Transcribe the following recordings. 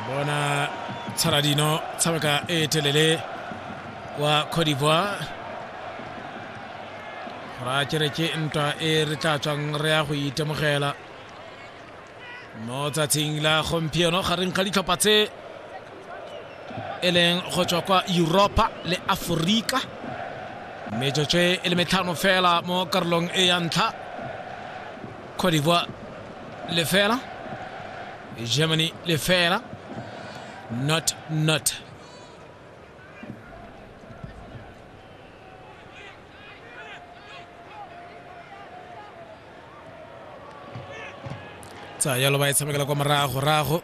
bona tshaladino tshameka e telele kwa cote d'ivoire ra kere ke ntwa e re tla tswang re ya go itemogela mo tsatsing la gompieno gareng ga ditlhopha tse e leng go tswa kwa europa le aforika metsotso e le metlhano fela mo karolong e ya ntlha Côte d'Ivoire lefela Germany lefela not not tsa yalo ba e tshamekela kwa morago rago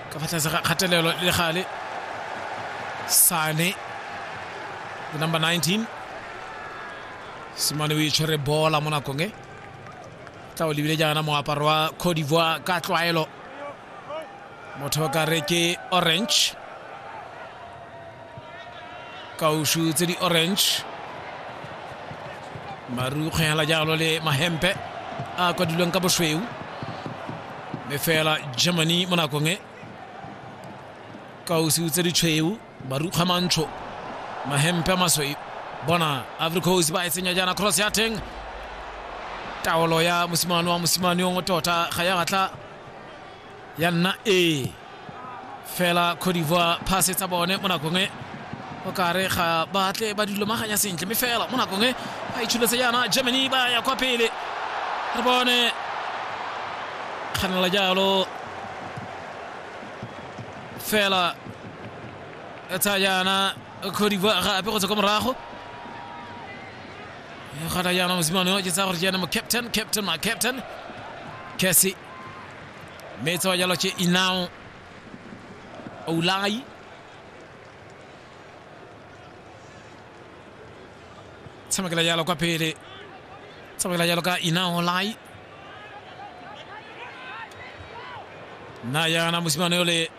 ka fa tlase ga kgatelelo le gale sane the number 19 simane o itshwere bola mo nakong e tla o lebile jaana moaparo wa cote d'ivoire ka tlwaelo motho o ka re ke orange kaušu tse di orange marukgwe hela jalo le mahempe a kwadilweng ka bosweu mme fela germany mo nakong e kausu tse di tshweu marukgwe mantsho mahempe a masweu bona ivory coast ba e tsenya jaana cross ya teng taolo ya mosimane wa mosimane yo ngo tota ga ya batla ya nna e fela cote d'ivoire pass tsa bone mo nakong e o kare ga batle ba dilomaganya sentle mme fela mo nakong e ba itshuletse yana germany ba ya kwa pele re bone kganela jalo fela e tsaya yana cote d'ivoire gape go tswa kwa morago e gata yana mosimane o ke tsaya gore ke ene mo captain captain ma captain cassi mme tsewa jalo che inao oulai tshamekela jalo kwa pele tshamekela jalo ka inao olai na yana mosimane yole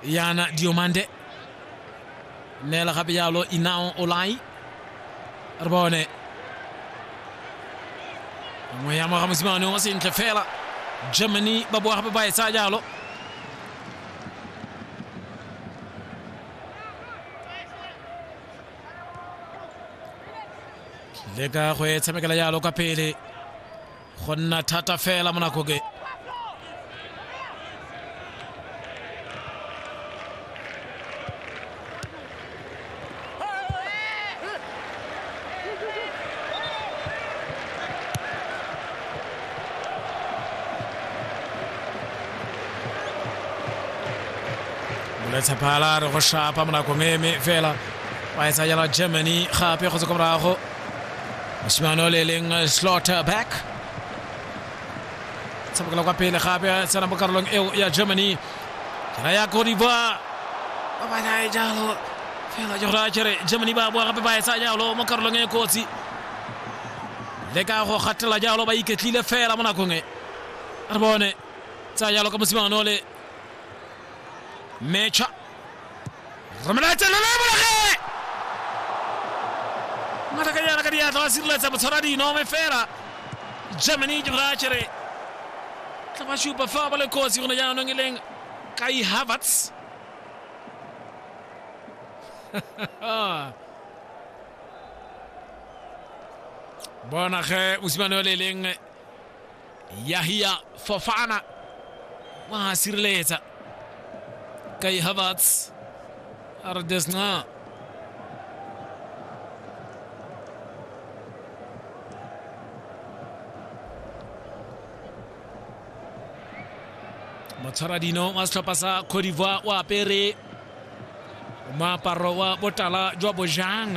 Yana Diomande neela gape yalo Inao Olai re bone nngwe ya moga mosimane o sentle fela Germany ba boa gape ba e tsaya jalo leka go e tshamekela jalo ka pele go nna thata fela mo nakong e letshephala re go shapa mo nakong eme fela ba e tsayela germany gape go tse ko morago mosimane o le leng eh, slaughter back tshamekela kwa pele gape tsena mo karolong eo ya germany kera ya kodiva ba ba nae jalo fela ke gore a kere germany ba boa gape ba etsa jalo mo karolong e kotsi le ka go gatela jalo ba iketlile fela mo nakong e re bone tsa jalo ka mosimane o le mecha romelatsa le le bolage matakanyana ka diatla wa sireletsa botshwara dino me fela germany ke bra chere tla ba shupa fa ba le kotsi gone jaanong e leng kai havertz bona ge mosimane o le e leng yahia fofana wa sireletsa kai havertz a re desna motshwaradino wa setlhopha sa cote d'ivoire o apere moaparo wa botala jwa bojang